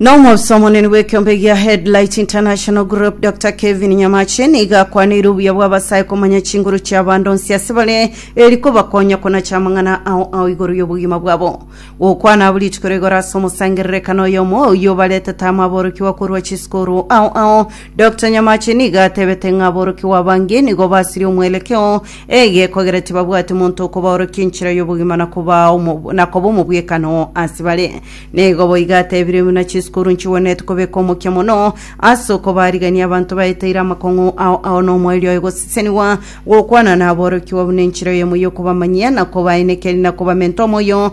na omosi omonene bw'ekiombe gia headlight international group dr kevin nyamache niga akwanire obuya bw'abasae komanya chinguru chia bando nsi ase bare eri kobakonya konacha amang'ana ao ao igoro y'obogima bwabo gokwana abo rituko rigoro ase omosangererekano oyomo oyio baretete amaborokigwa korwa chisikuru ao ao dr nyamache niga atebete ng'a aborokigwa abange nigo basirie omwerekeo Egeeko ekero tibabwati monto okobaorokia enchera y'obogima na koba omo- na koba omobwekano ase bare. Nigo boigo atebirie buna chisukuru nchigwenereti kobeka omokia mono ase okobaarigania abanto baeteire amakong'u ao ao nomoerio oye gosesenigwa gokwana naborokigwa buna enchera eyemo y'okobamanyia na kobainekeria na kobamenta omoyo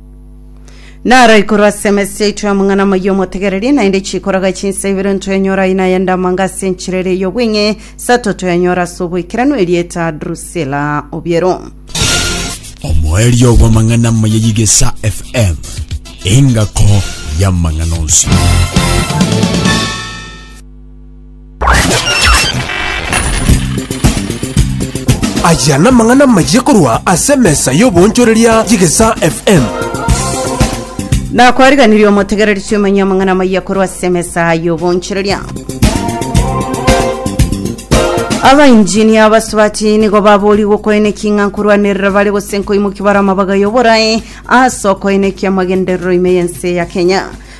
Naro ikorwa ase emesi yaito y'amang'ana amaya omotegereri, naende chikoraga chinsa ibere ntoyanyora aina yende amanga ase enchera ere y'obweng'e, sato toyanyora ase oboikeranu erieta Drusilla Obiero. omoerio bw'amang'ana amaya y'egesa fm engako y'amang'ana onsi Aya namang'ana amayia korwa ase emesa y'oboonchoreria y'Egesaa FM. nakwariganirie omotegereretie omanye amang'ana amaya korwa ase emesa y'oboonchoreria abainjinia abasubati nigo baboorigwe okoenekia ng'a nkorwanerera bare gose nkoimokia bare amabaga y'oborae ase okoenekia amagenderero ime y'ense ya kenya